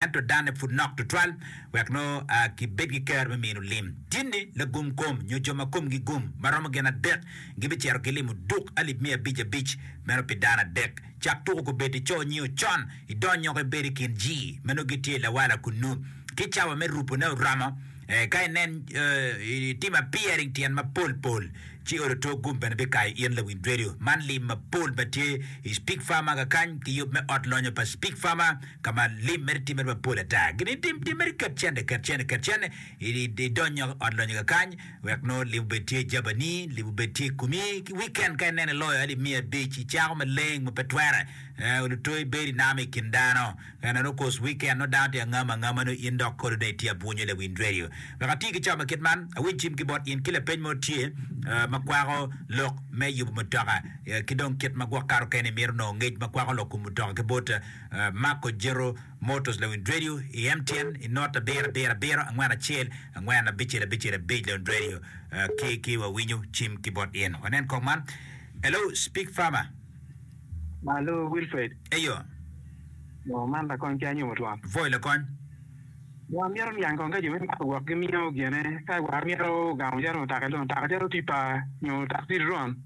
ento danne pud nok tutwal wek nongo gibed ki kero me mino lim. Tinni, lagum kom nyo jo ma komgi gum ma romo gin adek gibicito gilimo duk alip miya abic abic meno pi dano adek. Cak tuku kubed i co nio con, idonyoko ibed i kin ji ma nongo gitye i lawala kunnu. Ki cawa me rupone oromo, eka inen, itimo appearing tyen mapol pol. Ci odo tok gum bene bikayo in lawiny redio man lim mapol ma tye i Speak Farmer kakany ki yub me ot lonyo pa Speak Farmer ka ma lim mere timmere mapol ata. Gin itim timmeri kecene kecene kecene idony nyok i ot lonyo kakany wek nongo lim obed tye jabani, lim obed tye i komi. Ki wiken ka ineno iloyo aye limiya abic, icako maleng ma pe twere, ee, odo tok ibedo inamo i kin dano. Ena ni okos weekend nongo dano tye ka ngamo angama nongo in dok kolu dong itye abwunyo lawiny radio. Wek ati ki cawa ma kit man, awiny cim ki bot in ki lapeny mo tye ma kwako lok me yubu mutoka ki dong kit ma gwok kato kene imito nongo ngec ma kwako lok kom mutoka ki bot Marco Jero Motors lawiny radio i MTN i not abiro abiro abiro angwen acel angwen abicel abicel abic lawiny radio ki ki wawinyo cim ki bot in wanen kong man Hello speak farmer. Malo Wilfred. Eyo. Ngo man lakony ki anyomo twon. Voi lakony. War myero niang kong ka jo me mako gwok gi miyo gene ka war myero ogamo calo mutoka dong mutoka calo tipa nyo takci dron.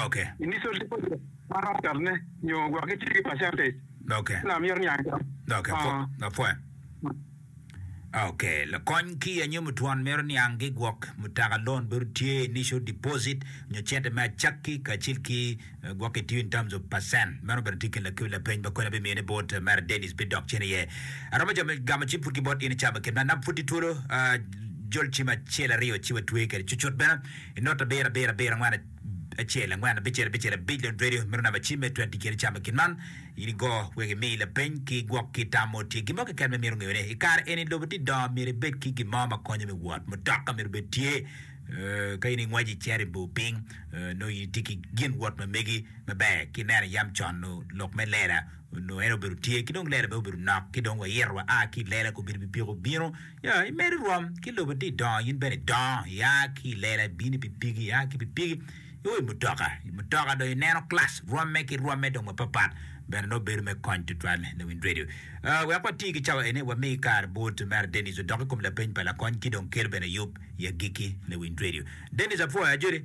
Ok. Initial deposit ma romo cot ne nyo gwok gi tye ki percentage. Ok. Lam myero niang kong. Ok. Apwoya. Ok, Lakony kiya nyo mutwon meno niang gi gwok mutaka loan bedo tye initial deposit nyo cente me acakki kacel ki gwok ki tiyo in terms of percent. Meno bene tye kin lakiu lapeny ma koni abimiyo ni bot Mary Dennis bi dok cen iye. Aromo jo me gamo cim pud ki bot in i cabo kit man. Nap pud tye twolo ah, jol cim acel aryo ci watweye kede cucut bene i nota abiro abiro abiro angwen acel angwen abicel abicel abic lon radio meno namba cim me tweti kene camo gin man in igo wek imi lapeny ki gwok ki tam mo tye gin mo keken ma imito ngeyo ne ikare eni lobo tye dongo myero ibed ki gin mo ma konyo me wot mutoka myero bed tye ka in ingwec iceri bor piny nongo in itye ki gin wot ma megi maber ki neno yam con nongo lok me lela nongo en obedo tye ki dong lela bene obedo nok ki dong wayito wa a ki lela kobedi bipiko bino Ya, imed irom ki lobo ti idongo, in bene idongo, ia ki i lela ibino i pipigi, ia ki i pipigi iwo i mutoka. I mutoka dong ineno klac rwomme ki rwomme dong mapatpat, bene nongo bedo me kony tutwal ne Wind Radio. Ah, wek wati ki cawa eni, wami kare bot Mera Dennis odok i kom lapeny pa lakony ki dong kel bene yub i agikki ne Wind Radio. Dennis apwoyo ajoli.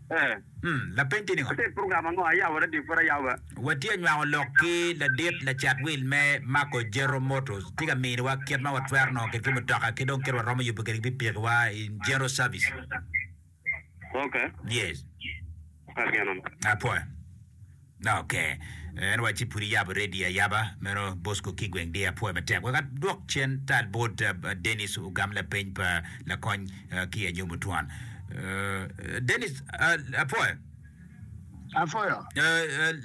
Ee. Lapeny tye ningo? Ate program ango a yabo radio pud ayabo be? Watye nywako lok ki ladit lacat wil me Marco Jero Motors. Tye ka miniwa kit ma watwero nongo kit ki mutoka ki dong kit waromo yubo kede ki pikipiki wa in Jero service. Okay. Yes. Apwoya. Ok. En wacci pud iyabo redio ayaba meno Bosco Kigweng dear apwoyo matek. Wek adwok cen tal bot Denis ogam lapeny pa lakony ki anyom otwan. Denis apwoyo. Apwoyo.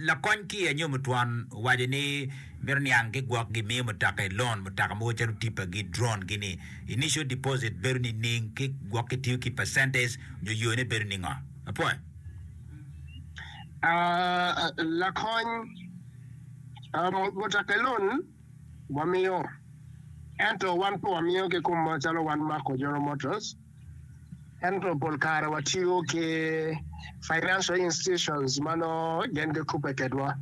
Lakony ki anyom otwan owaco ni mito niang ki gwok gi miyo mutaka i loan mutaka mogo calo tipa gi drone gi ni initial deposit bedo nining ki gwok ki tiyo ki percentage nyo yone bedo ningo? Apwoyo. Lakony, mutoka elun wamiyo ento wan pe wamiyo ki kom macalo wan Mako General Motors ento pol kare watiyo ki financial institutions ma nongo gin gikubbe kedwa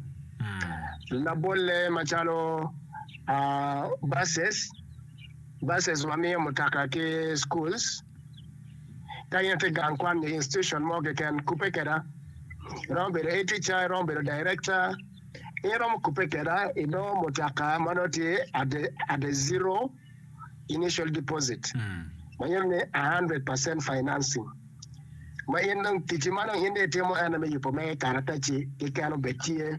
labolle macalo buses, buses wamiyo mutoka ki schools. Ka in itye gang kwan nyo institution mo keken, kubbe kweda. Iromo bedo head teacher, iromo bedo director, in iromo kubbe kweda i nongo mutoka ma nongo tye at the, at the zero initial deposit ma nyuto ni 100% financing ma in dong ticci ma dong in dong itimo ene me yubo mere karatacci keken obed tye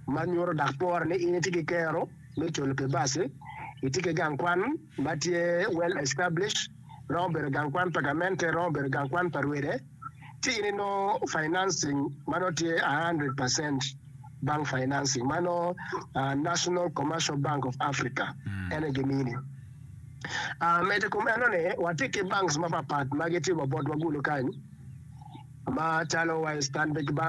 ma nyuto dok pore ni in itye ki kero me culu pi baci, itye ki gang kwan ma tye well established. romo bedo gang kwan pa gamente, romo bedo gang kwan pa rwede, ci in inongo financing ma nongo tye 100 percent bank financing ma nongo uh, National Commercial Bank of Africa mm. ene gimini. Uh, medo kom eno ni watye ki banks mapapat ma gitye wa botwa gulu kany ma calo wa Stanbic Bank